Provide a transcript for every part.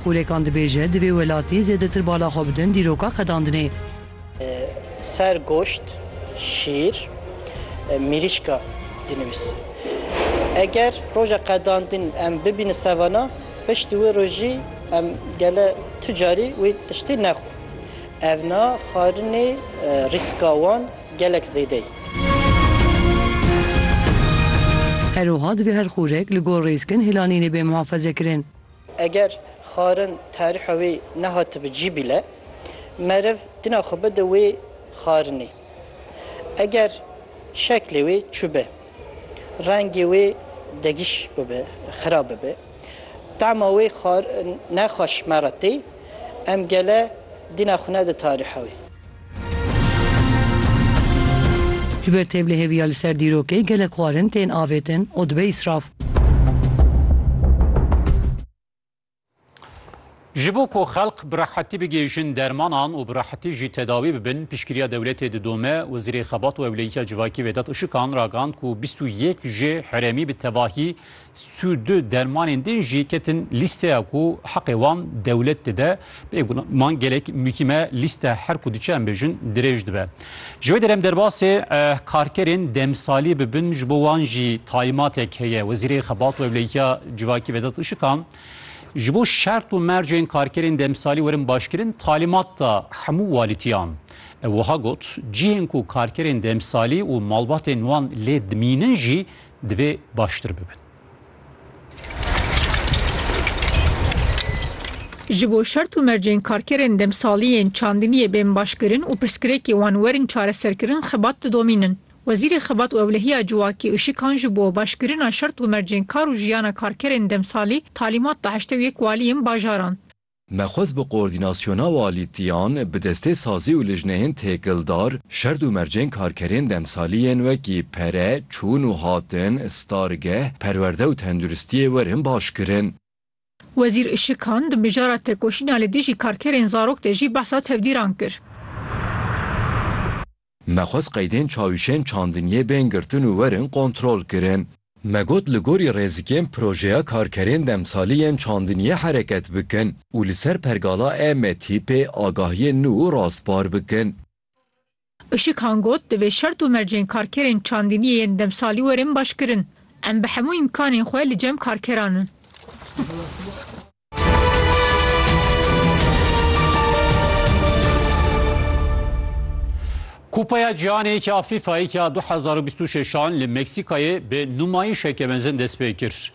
Kolekan dibêje, divê welatî zêdetir bala xwe bidin dîroka qedandinê. Ser goşt, şîr, mîrîşka dinivîs. Eger roja qedandin em bibînin sevana, piştî wê rojî em gele tu carî wê tiştî nexwin. Evna xwarinê rîska wan gelek zêde ye. Herwiha divê her xûrek li gor rêzkin hêlanînê bê muhafazekirin. Eger xwarin tarîha wê nehatibi cî bîle, meriv dina xwe bide wê xwarinê. Eger şeklê wê çû be, rengê wê degiş bibe, xirab bibe, tema wê xwarin nexweş me re tê, em gele dina xwe nede tarîha wê. Ji ber tevlihêviya li ser dîrokê gelek xwarin tên avêtin û dibe îsraf. Ji bo ku xelk bi rehetî bigihîjin dermanan û bi rehetî jî tedawî bibin, piştgiriya dewletê didome. Wezîrê Xebat û Ewleyiya Civakî Vedat Işikan ragand ku bîst û yek jê herêmî bi tevahî Sû du dermanên din jî ketin lîsteya ku heqê wan dewlet dide. Bê guman gelek mûkîm e, lîste her ku diçe em bêjin dirêj dibe. Ji wê derem derbasê karkerên demsalî bibin ji bo wan jî taymatek heye. Wezîrê Xebat û Ewlehiya Civakî Vedat Işikan ji bo şert û mercên karkerên demsalî werin başkirin talîmat da hemû walîtiyan. Ew wiha got, Cihên ku karkerên demsalî û malbatên wan lê dimînin jî Divê baştir bibin. Ji bo şert û mercên karkerên demsaliyên çandiniyê bên başkirin û pirsgirêkê wan werin çareserkirin xebat didomînin. Wezîrê Xebat û Ewlehiya Civakî Işikan ji bo başkirina şert û mercên kar û jiyana karkerên demsalî talîmat da heştê û yek waliyên bajaran. Me xwest bi koordînasyona walîtiyan, bi destê sazî û lijneyên têkildar, şerd û mercên karkerên demsalî yên wekî pere, çûn û hatin, stargeh, perwerde û tenduristiyê werin baş kirin. Wezîr Işikan di mijara tekoşîna li dijî karkerên zarok de jî behsa tevdîran kir. Me xwest qeydên çawişên çandiniyê bên girtin û werin kontrolkirin. Me got li gorî rêzikên projeya karkerên demsalî yên çandiniyê hereket bikin û li ser pergala EMTPê agahiyên nû û rastbar bikin. Işıkhan got, divê şert û mercên karkerên çandiniyê yên demsalî werin başkirin. Em bi hemû îmkanên xwe li cem karkeran in. Kupaya Cîhanê ya FîFAyê ya 2026 li Meksîkayê bi nûmayîşeke mezin dest pê kir.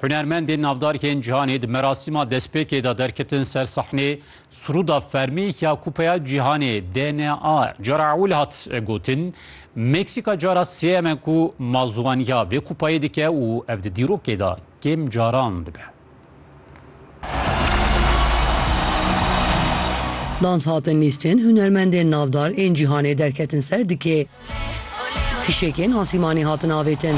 Hunermendên navdarkên cîhanê di merasîma destpêkê de derketin ser sahnê Surûda fermî ya Kupaya Cîhanê DNA cara ewil hat gotin. Meksîka cara sêyem e ku mazûwaniya vê kupayê dike û ev di dîrokê de kêm caran dibe. Dans hatin lîstên hunermendên navdar ên cîhanê derketin ser dikê. Fîşekên asîmanê hatin avêtin.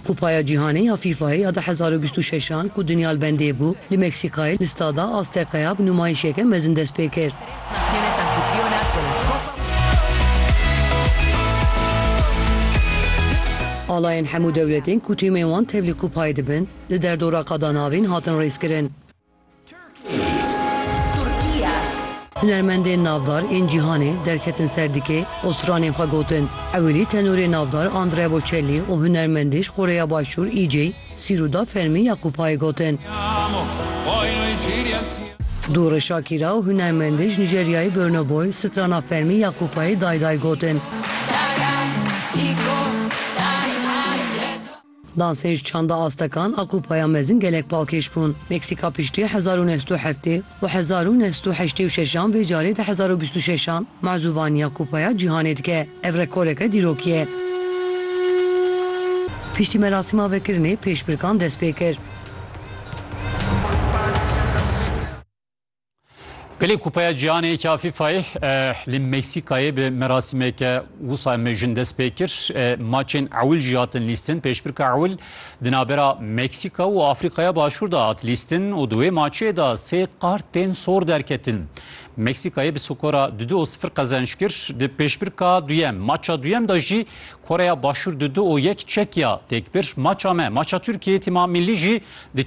Kupaya Cîhanê ya FIFA'yê ya du hezar û bîst û şeş an ku dinya li bendê bû, li Meksîkayê li Stada Azteca'ya bi nûmayîşeke mezin dest pê kir. Alayên hemû dewletên ku tîmên wan tevlî kupayê dibin, li derdora qada navîn hatin rêzkirin. Hunermendên navdar ên cîhanê derketin ser dikê û stranên xwe gotin. Ewilî tenorê navdar Andrea Bocelli û hunermendê ji Koreya Başûr EJ, Sîru da fermî ya ku payê gotin. Dûrê Şakîra û hunermendê ji Nîjeryayê Burna Boy strana fermî ya ku payê dayê dayê gotin. Dansên ji çanda astekan a ku paya mezin gelek pakêş bûn. Meksîka piştî hezar û neh sed û heftê. Bi hezar û neh sed û heştê û şeş an vê carê di hezar û bîst û şeş an mazûvaniya Kupaya Cîhanê dike. Ev rekoreke dîrokî ye. Piştî merasîma vekirinê pêşbirkan dest pê kir. Belê Kupaya Cîhanê yekî a FIFA'yê li Meksîkayê bi merasîmeke wisa mejin dest pê kir. Maçên ewil jî hatin lîstin. Pêşbirka ewil Di navbera Meksîka û Afrîkaya Başûr de hat lîstin û di wê maçê de sê kartên sor derketin. Meksîkayê bi skora du du û sifir qezenç kir. Di pêşbirka duyem, maça duyem de jî Koreya Başûr du du û yek Çekya têk bir. Maça me, maça Tirkiyeyê tîma mîllî jî di